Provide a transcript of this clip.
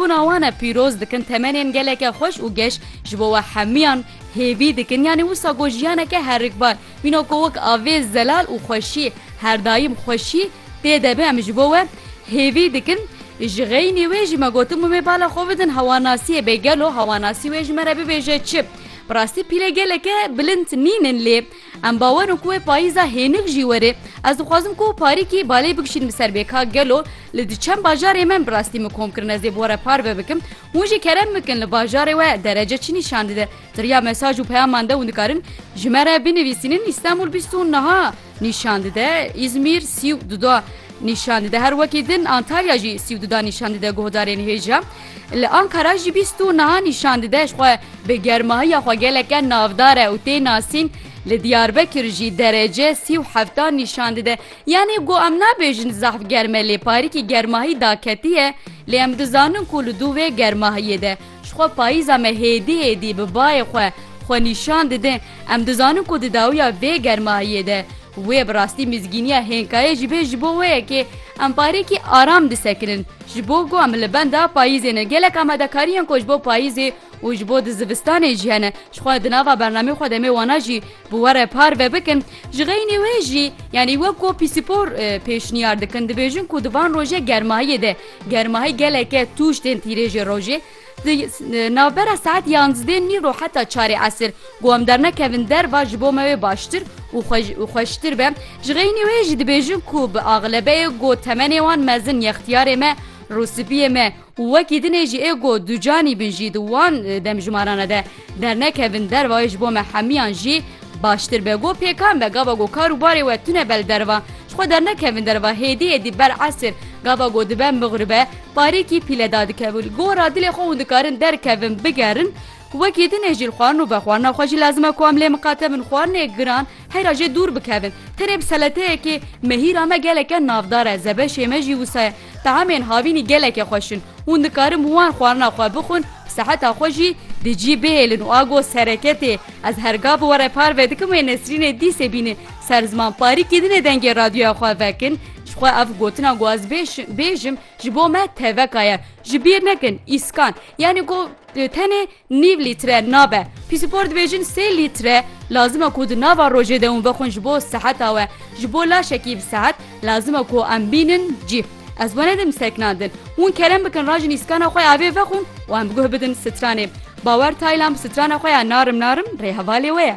Bûna wan e pîroz dikin temenên geleke xweş û geş ji bo we hemûyan hêvî dikin yanî wisa got jiyaneke herikbar mîno ku wek avê zelal û xweşî her daîm xweşî tê de be em ji bo we hêvî dikin ji xeynî wê jî me gotin mumê bala xwe bidin hewanasiyê bê gelo hewanasî wê ji me re bibêje çi bi rastî pîle geleke bilind nînin lê Em bawer in ku wê payîza hênik jî were. Ez dixwazim ku parîkî balê bikişînim li ser bê ka gelo li di çend bajarê me bi rastî min kom kirin ez ê bi we re parve bikim. Hûn jî kerem bikin li bajarê we derece çi nîşan dide. Ti riya mesaj û peyaman de hûn dikarin ji me re binivîsînin Îstanbul bîst û niha nîşan dide, Îzmîr sî û du da nîşan dide. Her wekî din Antalya jî sî û du da nîşan dide guhdarên hêja. Li Ankara jî bîst û niha nîşan dide ji xwe bi germahiya xwe geleke navdar e û tê nasîn, li Diyarbekir jî derece sî û heftan nîşan dide. Yanî ku em nabêjin zehf germ e lê parîkî germahî daketiye, lê em dizanin ku li dû vê germahiyê de ji xwe payîza me hêdî hêdî bi bayê xwe xwe nîşan dide, em dizanin ku di dawiya vê germahiyê de, Wê bi rastî mîzgîniya hênkayê jî bê ji bo wê ye kê em barekî aram disekinin. Ji bo ku em li benda payîzê ne gelek amadekarî yên ku ji bo payîzê û ji bo di zivistanê jî hene ji xwe di nava bernameyê xwe demê wana jî bi we re parve bikin. Ji xeynî wê jî yanî wek ku pîsîpor pêşniyar dikin dibêjin ku di van roje germahiyê de germahî geleke tûj tên tîrêjê rojê, Di navbera saet yanzdê nîro heta çarê esir ku em dernekevin derva ji bo me wê baştir û xweştir be. Ji xeynî wê jî dibêjin ku bi axlebeyê got temenê wan mezin yextiyarê me rûspiyê me û wekî dinê jî ê got ducanî bin jî di wan demjimara de Dernekevin dervayê ji bo me hemiyan jî baştir be. Go pêkan be gava go kar û barê we tune be li derva. Ji xwe dernekevin derva hêdî hêdî ber esir gava go dibe mighribe parêkî pîle dadikevin. Go ra dilê xwe hûn dikarin derkevin bigerin wekî din ê jî li xwarin û be xwarina xwe jî lazim e ku em lê miqate bin xwarinê giran heyra jê dûr bikevin. Tenê bi seleteyekê mehîra me geleke navdar e zebeşê me jî wisa ye. Tahemên havînî gelekê xweş in. Hûn dikarin wan xwarina xwe bixwin, seheta xwe jî di cî bihêlin û a got sereketê. Ez her ga bi were parve dikim wê nesrînê dîsê bînin ser ziman parî kîdinê dengê radyoya xwe vekin. Ji xwe ev gotina ku ez bêjim ji bo me teveka ye. Ji bîr nekin îskan yanî ku tenê Nîv lître nabe. Pîsîpor dibêjin sê lître lazim e ku di nava rojê de hûn vexwin ji bo seheta we. Ji bo laşekî bi sehet lazim e ku em bînin cî. Ez we nedim seknandin. Hûn kerem bikin rajin îskana xwe avê vexwin û em guh bidin stranê. Bawer Taylan bi strana xwe ya narim narim rê hevalê we ye.